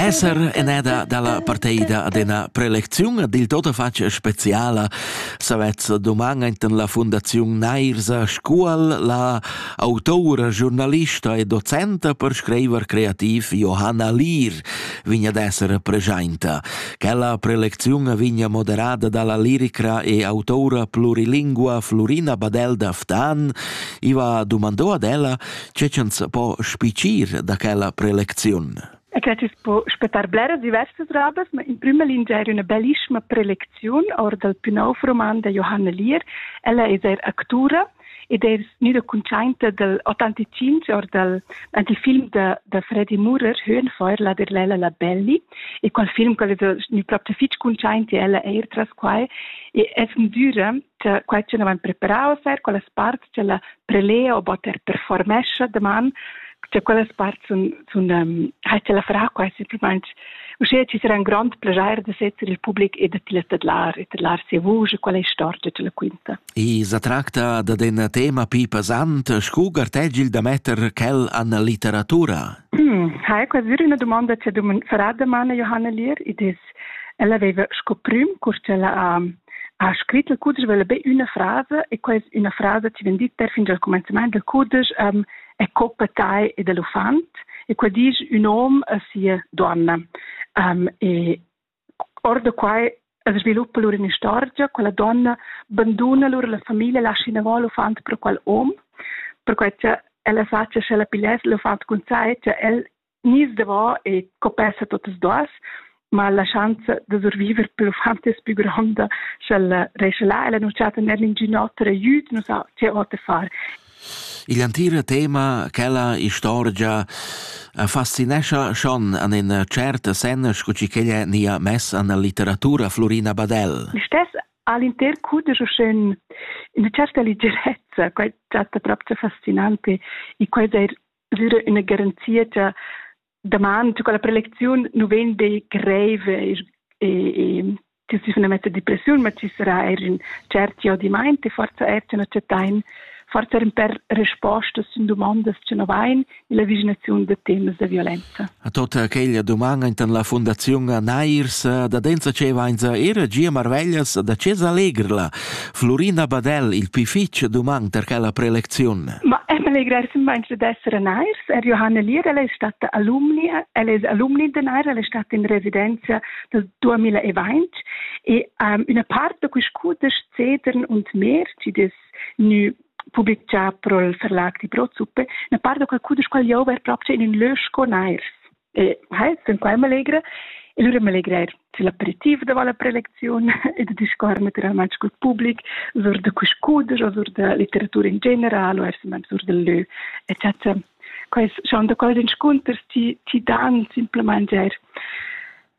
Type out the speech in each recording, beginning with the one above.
Esser eneda dalla parteida ad ena prelecziun ad il tota fac speciala savez doman enten la Fundaziun Neirsa Scuol la autora, giornalista e docenta per scriver creativ Johanna Lier vigna d'esser pregiainta. Quella prelecziun vigna moderada dalla lirica e autora plurilingua Florina Badel d'Aftan iva domandò ad ella Che ch'ans po spicir da quella prelecziun? E che tüs po spettar bleras diversas robas, ma in prima lingia era una bellissima prelecziun or dal più nov roman da Johanna Lier. Ella è er actura ed è gnüda cuntschainta dal 85 or dal anti film da, da Freddy Murer, Höhenfeuer, la Derlela la Belli, e qual film qual es gnü propcha fich cuntschaint e ella eir tras quai, e es gnüda Tge, quai che numan preparaus er, quellas parts che la prelea o botter performescha deman, che quellas parts sun, sun um, ha che la farà quasi simplesmente uschè ci sarà un grande piacere de setter il public e de tilla tadlar e tadlar sia vuce, quella istorgia che la quinta. I sa tracta da un tema più pesante, scu gartegil da metter quel an la litteratura? Hmm, ha è quasi una domanda che farà domani Johanna Lier, ed es Ella veva sco prüm custella a ha scrit il cudesch vela be üna frasa e quella üna frasa ti vegn dit perfin dal cumenzament del cudesch um, è coppa tai e dell'uffant e quella dice un hom a sia donna um, e or da quai es sviluppa lur un'istorgia quella donna banduna lur la famiglia lascia in avval l'uffant per qual hom per quai cha ella sa cha sche la pigliess l'uffant cun sai cha el Nis davò e copessa tuttas duas, ma la schanza da surviver per uffant es pü gronda, sch'ella rescha là. Ella nu chatta ner ingün oter aiüt, nu sa che oter far. Il entira tema, quella istorgia, fascinescha schon an in tschert sen scu chi ch'ella nia mess an la litteratura Florina Badell. Stess all'inter cudesch schön in certa leggerezza, quai chatta proprio fascinante, e quai er dura üna garanzia cha daman tü quella prelecziun nu vegn be greiv e e tü si fna mezza depressiun, ma ci sarà eir ün tschert jodimaint e forza eir tü na chattain forza in per respostas sun dumondas che no vain illa vaginaziun da temas da violenza. A tota quella duman intan la Fundaziun Nairs da Denza ce vainza era gia marveglias da ce s'allegrla Flurina Badel il pli fitg dumang per quella prelecziun. Ma Emily Gressin meint d'esser nairs, er Johanna Lier, ella è stata alumnia, ella è alumni de nair, ella è stata in residenza del 2020 e um, una part da quest cudesch Cedern und Meer, die das nu publicà prol Verlag di Brotsuppe, una part da quel cudesch qual jau ver proprio in un lösco nairs. E hai sun quai m'allegra. E lura m'allegra eir sül aperitiv davant la prelecziun e da discuorrer natüralmaing cul public sur da quist cudesch o sur da litteratura in general o eir sur dal lö, eccetera. Quais schon da quels inscunters ti, ti dan simplamaing eir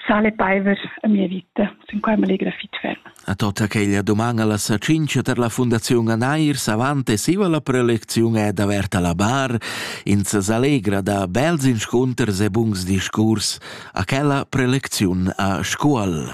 sale paiver a mia vita. Sun quai m'allegra fitg ferm. A tota quella domanda la sacincha ter la Fundaziun Anairs avant e siva la prelecziun è d'averta la bar in se s'allegra da bels inscunters e buns discurs a quella prelecziun a Scuol.